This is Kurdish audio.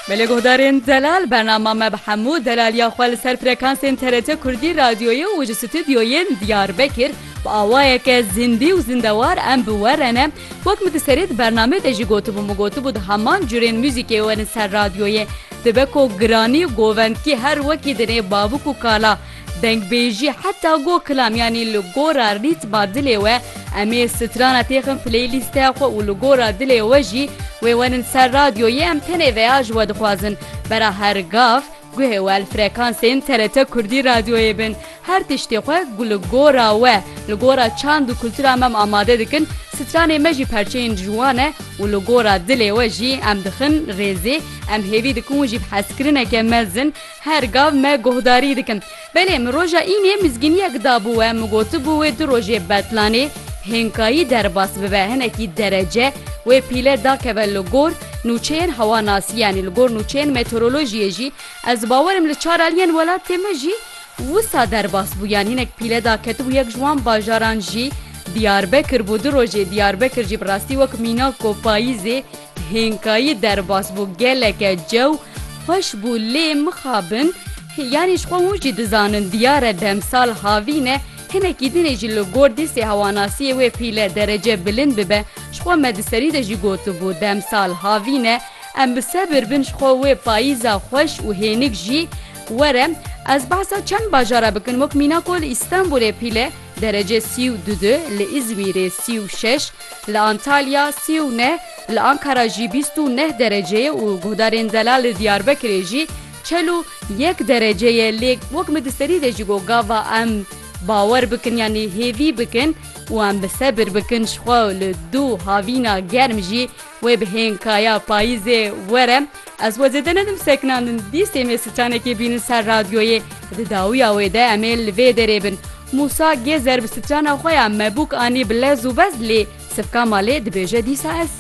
Belê Guhdarên Delal bernama me bi hemû delaliya xwe li ser frekansên TRT Kurdî Radyoyê û ji stûdyoyên Diyarbekir bi awayeke zindî û zindewar em bi we re ne. Wek min di serê di bernamê de jî gotibû min gotibû di heman curên muzîkê werin ser radyoyê dibe ku giranî û govendkî her wekî dinê babûk û kala Dengbêjî heta go kilam yanî li gora rîtma dilê we em ê strana têxin playlîsteya xwe û li gora dilê we jî wê werin ser radyoyê em tenê veya ji we dixwazin bera her gav guhê we li frekansên TRT Kurdî radyoyê bin her tiştê xwe ku li gora we li gora çand û kultura me em amade dikin stranê me jî perçeyên ji wan e û li gora dilê we jî em dixin rêzê em hêvî dikin û jî bi hezkirineke mezin Her gav me guhdarî dikin. Belê min roja înê mizgîniyek dabû we min gotibû wê du rojê betlanê hênkayî derbas bibe hinekî derece wê pîle dakeve li gor nûçeyên hewanasî yanî li gor nûçeyên meteorolojiyê jî ez bawer im li çar aliyên welatê me jî wisa derbas bû yanî hinek pîle daketibû yek ji wan bajaran jî Diyarbekir bû du rojê Diyarbekir jî bi rastî wek mîna ku payîzê Hênkayî derbas bû geleke cew xweş bû lê mixabin yanî ji xwe hûn jî dizanin diyar e demsal havîn e hinekî din ê jî li gor dîsê hewanasiyê wê pîle derece bilind bibe ji xwe me di serî de jî gotibû demsal havîn e em bi sebir bin ji xwe wê payîza xweş û hênik jî were ez behsa çend bajar e bikin wek mîna ku li Îstanbûlê pîle Derece sî û du di li Îzmîrê sî û şeş, li Antalya sî û neh, li Ankara jî bîst û neh derece ye û guhdarên zelal li Diyarbekirê jî çel û yek derece ye lê wek min di serî de jî got gava em bawer bikin yanî hêvî bikin û em bi sebir bikin jixwe li dû havîna germ jî Wê bi hêng kaya payîzê were. Ez xwe zêde nedim sekinandin. Dîstê me stranekê bînin ser radyoyê. Di dawiya wê de em ê li vê derê bin. Mûsa Gêzer bi strana xwe ya mebûk anî bi lez û bez lê sifka malê dibêje dîsa ez.